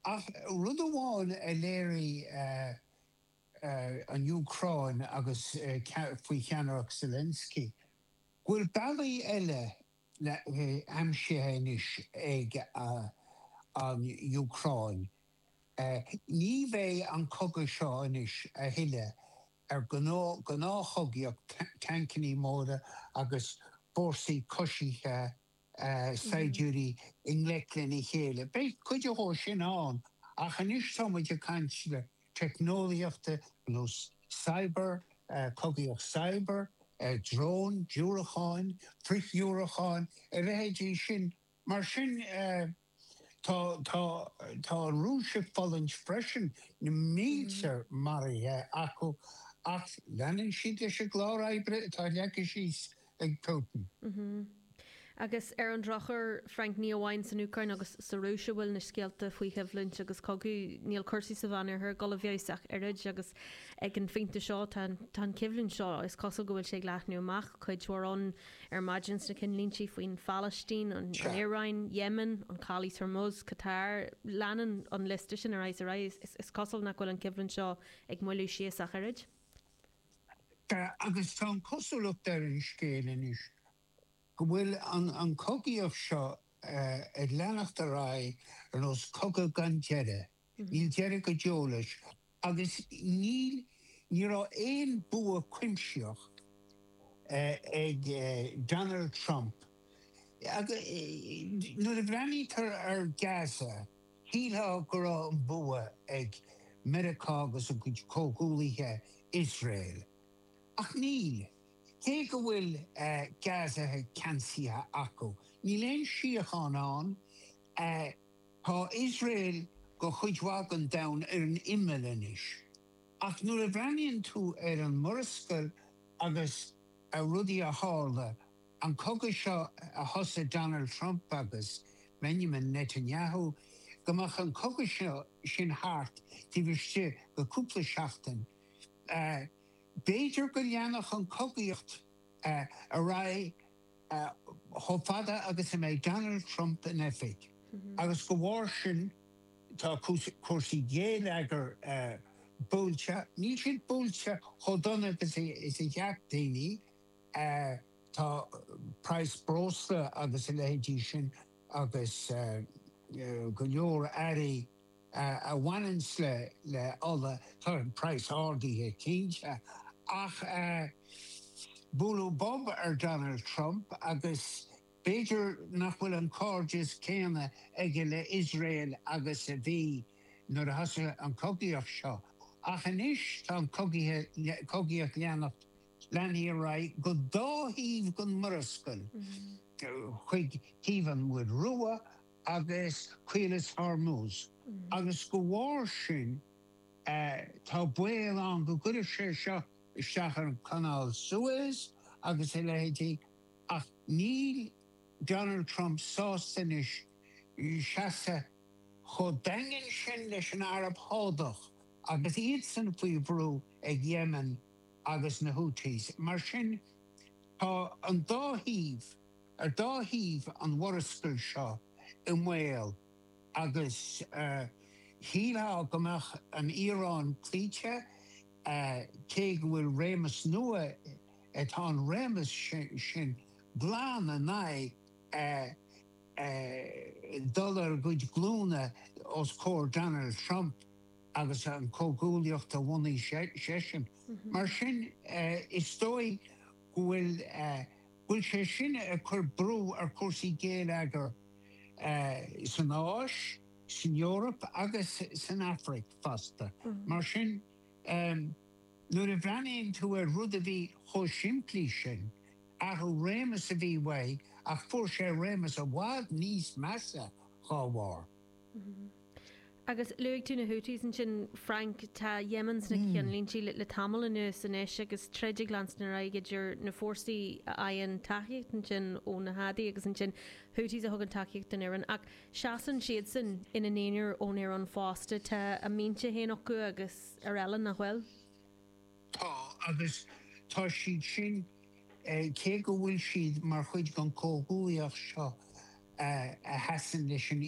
Ach rud amháin a léirigh an Úcráin agus faoi cheannaireacht Zelensky, bhfuil bealaí eile aimsithe anois ag an Úcráin. Ní bheidh an cogadh seo anois a thuilleadh ar ghnáthchogaíocht, tancannaí móra agus fórsaí coisithe saighdiúirí i ngleic lena chéile. Beidh cuid dhó sin ann, ach anois tá muid ag caint le teicneolaíochta nó cyber, cogaíocht cyber, dróin, diúracáin, frithdhiúracáin, a leithéidí sin. Mar sin. Tá tá tá an Rúis ag fulaingt freisin, na mílte maraithe acu, ach leanann siad leis an gclár oibre atá leagtha síos ag Putin. Agus ar an drochuair, Frank, ní amháin san Úcráin agus sa Rúis a bhfuil na scéalta faoi coimhlint agus cogadh, níl cúrsaí sa Mheánoirthear ag dul i bhfeabhas ach oiread agus ag an phointe seo tá an coimhlint seo, is cosúil go bhfuil sé ag leathnú amach cuid mhór ann. Ar maidin sna ceannlínte faoin Phalaistín, an Iaráin, Yemen, an Chalaois Hormuz, Qatar, leanann an liosta sin ar aghaidh is ar aghaidh. Is cosúil nach bhfuil an choimhlint seo ag moilliú síos ach oiread. Agus tá an cosúlacht ar an scéal anois go bhfuil an cogaíocht seo ag leanacht ar aghaidh ar nós cogadh gan deireadh. Níl deireadh go deo leis agus níl, ní raibh aon bua cuimsitheach ag Donald Trump. Nuair a bhreathnaítear ar Gaza, shílfeá go raibh an bua ag Meiriceá agus a gcuid comhghuallaithe, Iosrael. Ach níl. Cé go bhfuil Gaza ceansaithe acu, níl aon síocháin ann. Tá Iosrael do chuid mhaith den domhan ar an imeall anois, ach nuair a bhreathnaíonn tú ar an Murascaill agus ar rudaí a tharla, an cogadh seo a thosaigh Donald Trump agus Benjamin Netanyahu, go mbeadh an cogadh seo sin thart taobh istigh de chúpla seachtain, b'fhéidir go leanfadh an chogaíocht ar aghaidh. chomh fada agus a mbeidh Donald Trump in oifig, agus dá bharr sin tá cúrsaí géilleagair buailte, níl siad buailte chomh dona is a cheap daoine, tá praghas breosla agus a leithéidí sin agus go leor earraí a bhaineanns le ola tá an price ardaithe cinnte ach bualadh bob ar Donald Trump agus b'fhéidir nach bhfuil an cairdeas céanna aige le Iosrael agus a bhí nuair a thosaigh an cogaíocht seo ach anois tá an cogaíocht leanacht leanfaidh sí ar aghaidh go dá thaobh den Mhurascaill chuig taobh an Mhuir Rua agus Caolas Hormuz, agus de bharr sin tá baol ann go gcuirfeadh sé seo isteach ar Chanáil Suez agus a leithéidí, ach níl Donald Trump sásta anois seasamh chomh daingean sin leis an Araib Shádach agus iadsan faoi bhrú ag Yemen agus na Houthis. Mar sin tá an dá thaobh. Ar dhá thaobh an mhurascaill seo i mbaol agus shílfeá go mbeadh an Iaráin cloíte, cé go bhfuil réimeas nua, tá an réimeas sin glan in aghaidh dul ar a gcuid glúnta os comhair Donald Trump agus an comhghuaillíocht a bhunaigh seisean. Mar sin, is dóigh go bhfuil bhfuil sé sin ag cur brú ar chúrsaí géilleagair san Áis, san Eoraip agus san Afraic fosta. Mar sin, nuair a bhreathnaíonn tú ar rud a bhí chomh simplí sin, athrú réimeas a bhí uaidh ach fuair sé réimeas i bhfad níos measa dá bharr. Agus luaigh tú na Houthis ansin, Frank, tá Yemen sna ceannlínte le tamall anuas anois agus troid ag leanstan ar aghaidh idir na fórsaí a fhaigheann tacaíocht ansin ó na Hadi agus ansin na Houthis a thugann tacaíocht don Iaráin ach seasann siadsan ina n-aonair ón Iaráin fosta. Tá a mbinse féin acu agus araile, nach bhfuil? Tá, agus tá siad sin, cé go bhfuil siad mar chuid den chomhghuaillíocht seo a sheasann leis an.